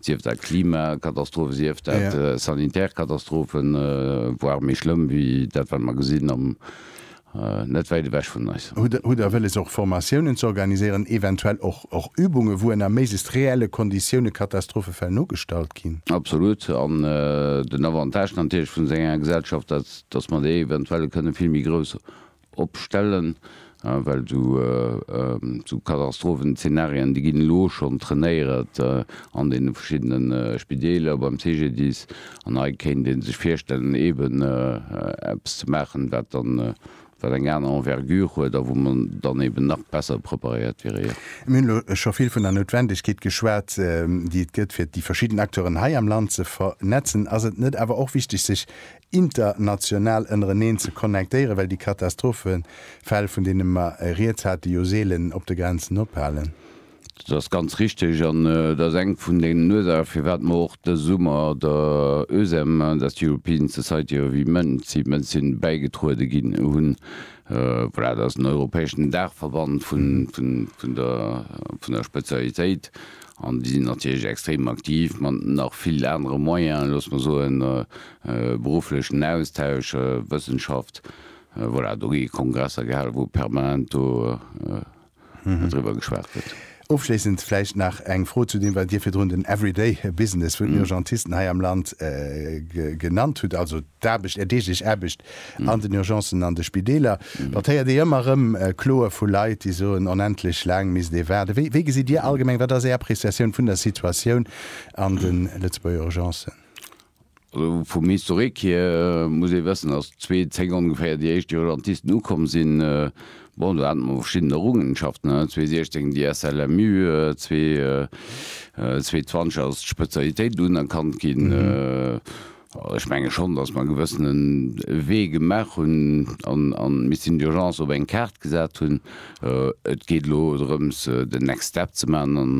sief dat Klimakatastrophen, sief dat sanitär Katastrophen, voire méi schlëmm wéi dat, wat mer gesinn am, net wäit ewech vun eis. Hutt Der wëlles och Formatiounen ze organiséieren, eventuell och Übungen, wou ënner méiglechst reelle Konditioune Katastrophefäll nogestallt ginn? Absolut. An den Avantage natierlech vun esou enger Gesellschaft, datt mer déi eventuell kënne vill méi grouss opstellen, well sou Katastrophenzeenarien, déi ginn elo schonn trainéiert an deene verschiddene Spideeler, beim CGDIS, an hei kéint ee sech virstellen, eeben eppes ze maachen, wat dann, wat eng aner Envergure huet a wou mer dann eeben nach besser preparéiert wieren. Jo. Mir hunn elo scho vill vun der Noutwendegkeet geschwat, déi et gëtt, fir déi verschidden Acteuren hei am Land ze vernetzen. Ass et net awer och wichtig, sech international ënnereneen ze connectéieren, well déi Katastrophefäll, vun deene mer rieds hate jo seelen op de Grenzen ophalen. Dat ass ganz richtig an dat ass eng vun den Ursache firwat mer och dëse Summer der EUSEM, dat ass European Society of Emergency Medicine, bäigetruede ginn hunn. Voilà, dat ass den europäeschen Daachverband vun der Spezialitéit. An déi sinn natierlech extrem aktiv mat nach vill anere Moyene, looss mer soen, berufflechen Austausch, Wëssenschaft, voilà, do gi Kongresser gehalen, wou permanent do driwwer geschwat gëtt. Ofschléissend vläicht nach eng Fro zu deem, wat Dir virdrun den Everyday Business vun den Urgentisten hei am Land genannt hutt, also d'Aarbecht, Är deeglech Aarbecht An den Urgencen an de Spideeler, dat héiert ee ëmmer erëm, Kloe vu Leit, déi soen, onendlech laang misst ee waarden. Wéi, wéi gesitt Dir allgemeng, wat ass Är Appreciatioun vun der Situatioun an de Lëtzebuerger Urgencen? Also vum Historique hier muss ee wëssen, datt 2010 ongeféier déi éischt Urgentisten ukomm sinn. Bon, do hate mer verschidden Errungenschaften, 2016 déi SLMU, 2020 ass d'Spezialitéit unerkannt ginn. Ech menge schonn, datt mer e gewëssene Wee gemaach hunn an d'Mission d'urgence op eng Kaart gesat hunn. Et geet elo drëms, den next step ze maachen. An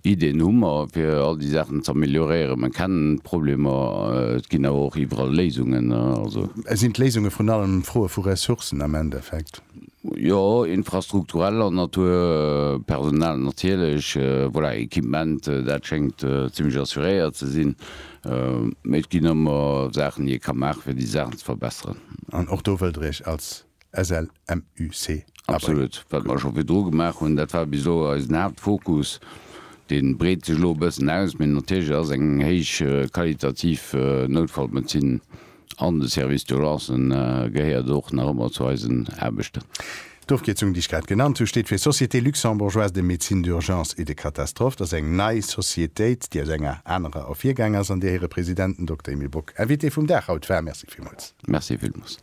Ideeën hu mer, fir all déi Saachen ze amelioréieren. Mer kennen d'Problemer, et ginn awer och iwwerall Léisungen. Sinn d'Léisunge vrun allem Froe vu Ressourcen am Endeffekt? Jo, infrastruktureller Natur, Personal natierlech, voilà, Equipement, dat schéngt zimlech assuréiert ze sinn. Mee et ginn ëmmer Saachen, déi ee ka maachen, fir déi Saachen ze verbesseren. An och do wëllt Der Iech als SLMUC abréngen? Absolut. Wat mer scho virdru gemaach hunn, dat war bis elo eisen Haaptfokus. Dee breet sech elo e bëssen aus. Mee natierlech ass eng héich qualitativ Noutfallmedezin An de Service d'Urgencen gehéiert och nach ëmmer zu eisen Aarbechten. D'Ofkierzung, déi ech grad genannt hu, steet fir Société luxembourgeoise de médecine d'urgence et de catastrophe. Dat ass eng nei Sociétéit, déi aus enger anerer ervirgaang ass an där hire President, den Dokter Emile Bock, Invité vum Dag haut war. Merci villmools. Merci villmools.